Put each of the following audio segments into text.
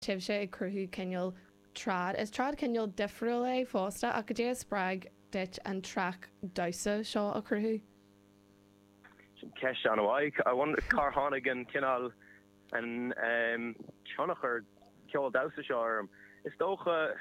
sibhse ag cruthú cineál trad. Is trad cineál difriúil é fosta ach goidé a spreag duit an treac damhsa seo a chruthú? Sin ceist an-mhaith. I wonder cár tháinig an cineál, an ehm, tionchar ceol damhsa seo orm. Is dócha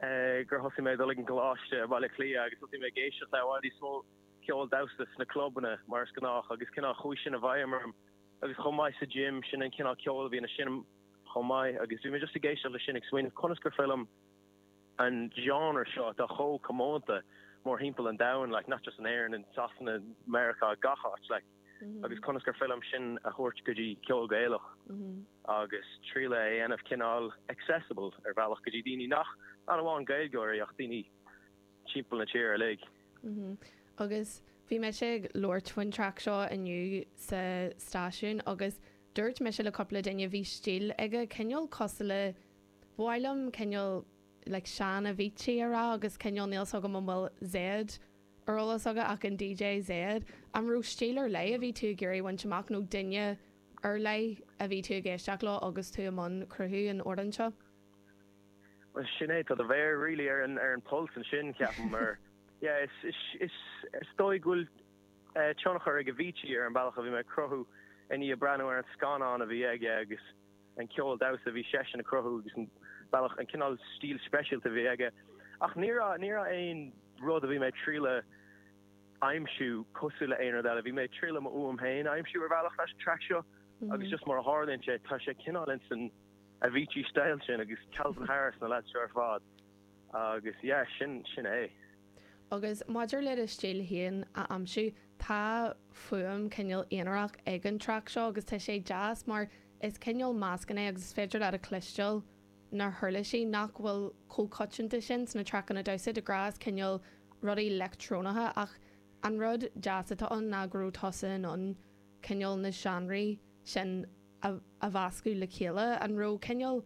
eh, gur thosaigh mé ag dul ag an gcoláiste i mBaile Átha Cliath agus thosaigh mé ag éisteacht le i bhfad níos mó ceol damhsa sna clubanna mar is gnách agus cineál chuaigh sin i bhfeidhm orm Agus chomh maith sa gym, sin an cineál ceoil a bhí á sheinm chomh maith agus bhí mé just ag éisteacht le sin ag smaoineamh conas gur féidir liom an genre seo atá chomh comónta mór thimpeall an domhain, like, not just in Éirinn, in Sasana, Meiriceá, gach áit, like, agus conas gur féidir liom sin a thabhairt go dtí ceol Gaelach agus triail é a dhéanamh cineál accessible ar bhealach go dtí daoine nach, not amháin Gaeilgeoirí, ach daoine timpeall na tíre uilig. Agus bhí mise ag labhairt faoin track seo inniu sa stáisiún agus dúirt mise le cúpla duine bhí stíl aige cineál cosúil le, ba mhaith liom cineál like sean-Avicii a rá agus cineál níl 's agam an bhfuil Zedd ar eolas agat ach an DJ Zedd, an raibh stíl ar leith a bhí tú ag iarraidh a bhaint amach nó duine ar leith a bhí tú ag éisteacht leo agus tú i mbun cruthú an amhráin seo? Well sin é, tá do mhéar really ar an pulse ansin ceapaim mar yeah is dóigh go bhfuil tionchar ag Avicii ar an bealach a bhí mé ag cruthú i ndiaidh breathnú ar an scannán a bhí aige agus an ceol damhsa a bhí seisean ag cruthú agus an bealach, an cineál stíl speisialta a bhí aige ach ní raibh, ní raibh aon rud a bhí mé ag triail a aimsiú cosúil le aon rud eile. Bhí mé ag triail m'fhuaim féin a aimsiú ar bhealach leis an track seo agus just mar a tharlaíonn sé tá sé cineál ins an. Avicii style sin agus Calvin Harris na leads seo ar fad agus yeah sin sin é. Agus maidir le do stíl féin a aimsiú, tá fuaim cineál aonarach ag an track seo agus tá sé deas mar is cineál meascán é agus is féidir leat a chloisteáil na huirlisí nach bhfuil chomh coitianta sin sna traiceanna damhsa de ghnáth is cineál rudaí leictreonacha ach an rud deas atá ann ná go raibh tusa in ann cineál na seánraí sin a a mheascadh le chéile. An raibh cineál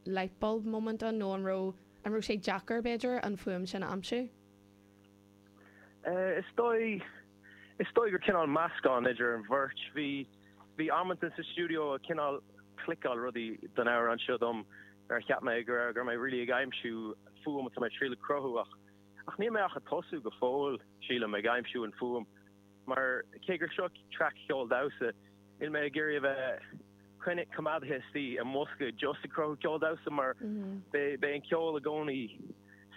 lightbulb moment ann nó an raibh an raibh sé deacair, b'fhéidir, an fuaim sin a aimsiú? Is dóigh, is dóigh gur cineál meascán idir an bheirt. Bhí, bhí amanta sa stiúideo a cineál cliceáil rudaí don amhrán seo dom nuair a cheap mé go raibh, go raibh mé really ag aimsiú an fuaim atá mé triail a cruthú ach, ach níl mé ach ag tosú go fóill sílim ag aimsiú an fuaim. mar cé gur seo traic cheoil damhsa, níl mé ag iarraidh a bheith cineál coimeádaithe istigh i mbosca just ag cruthú ceol damhsa, mar beidh an ceol i gcónaí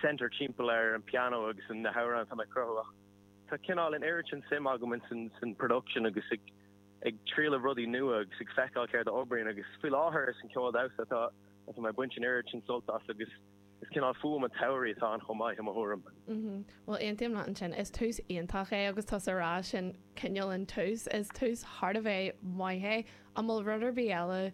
centred timpeall ar an pianó agus an na hamhráin atá mé ag cruthú, ach tá cineál in oiread sin suim agam insan production agus ag ag triail rudaí nua agus ag feiceáil céard a oibríonn agus faoi láthair is an ceol damhsa atá atá mé ag baint in oiread sin sult as agus Is cineál fuaime tsamhraidh atá ann chomh maith, i mo thuairim. Bhuel, aontaím leat ansin. Is tús iontach é agus tusa ag rá sin cineál an tús. Is tús thar a bheith maith é. An bhfuil rud ar bith eile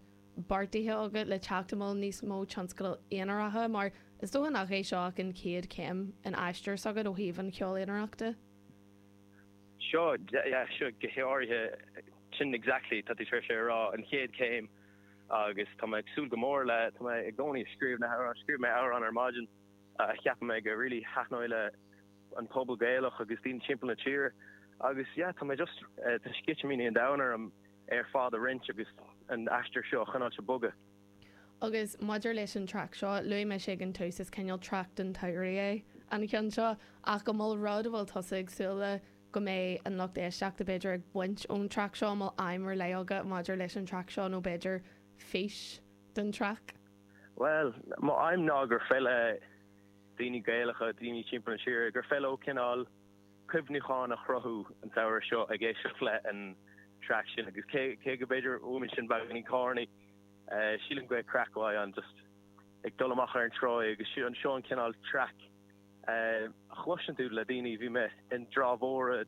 beartaithe agat le teacht? An bhfuil níos mó tionscadail aonaracha? Mar is dócha nach é seo ach an chéad chéim in aistear s'agat ó thaobh an cheoil aonarachta. Seo, go háirithe, sin exactly, tá tú tar éis é a rá, an chéad chéim. agus tá mé ag súil go mór le, tá mé i gcónaí ag scríobh na hamhráin, scríobh mé amhrán ar maidin a cheap mé go really taitneoidh le an pobal Gaelach agus daoine timpeall na tíre agus yeah tá mé just, tá sceitimíní an domhain orm iad ar fad a roinnt agus an aistear seo a choinneáil ag bogadh. Agus maidir leis an traic seo, luaigh mise ag an tús, is cineál traic don tsamhraidh é an ceann seo ach an bhfuil rud a bhfuil tusa ag súil le, go mbeidh an lucht éisteachta b'fhéidir ag baint ón traic seo an bhfuil aidhm ar leith agat maidir leis an traic seo nó b'fhéidir fís don traic? Bhuel, mo aidhm ná gur féidir le daoine Gaelacha, daoine timpeall na tíre, gur féidir leo cineál cuimhniúcháin a chruthú an samhradh seo ag éisteacht le an traic sin agus cé cé go b'fhéidir fuaimníonn sin beagainín corny sílim go mbeidh craic mhaith ann just ag dul amach ar an tsráid agus seo an seo an cineál traic a chloiseann tú le daoine. Bhí mé i dTrá Mhór i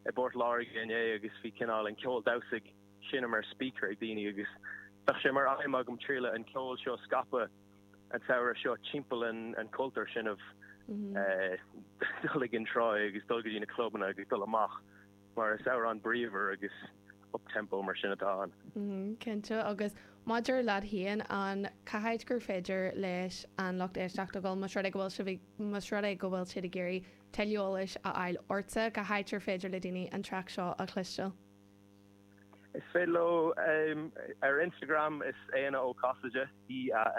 bPort Láirge inné agus bhí cineál an ceol damhsa ag seinm ar speaker ag daoine agus bheadh sé mar aidhm agam triail an ceol seo a scaipeadh an samhradh seo timpeall an an cultúr sin ah mm-hmm. eh, dul ag an trá agus dul go dtí na clubanna agus dul amach Mar is amhrán bríomhar agus up-tempo mar sin atá ann. Cinnte, agus maidir leat féin, cén áit gur féidir leis an lucht éisteachta dhul más rud é go bhfuil sibh ag, más rud é go bhfuil siad ag iarraidh tuilleadh eolais a fháil ortsa, cén áit gur féidir le daoine an traic seo a chloisteáil? Is féidir leo ar Instagram, is Éanna Ó Casaide í a.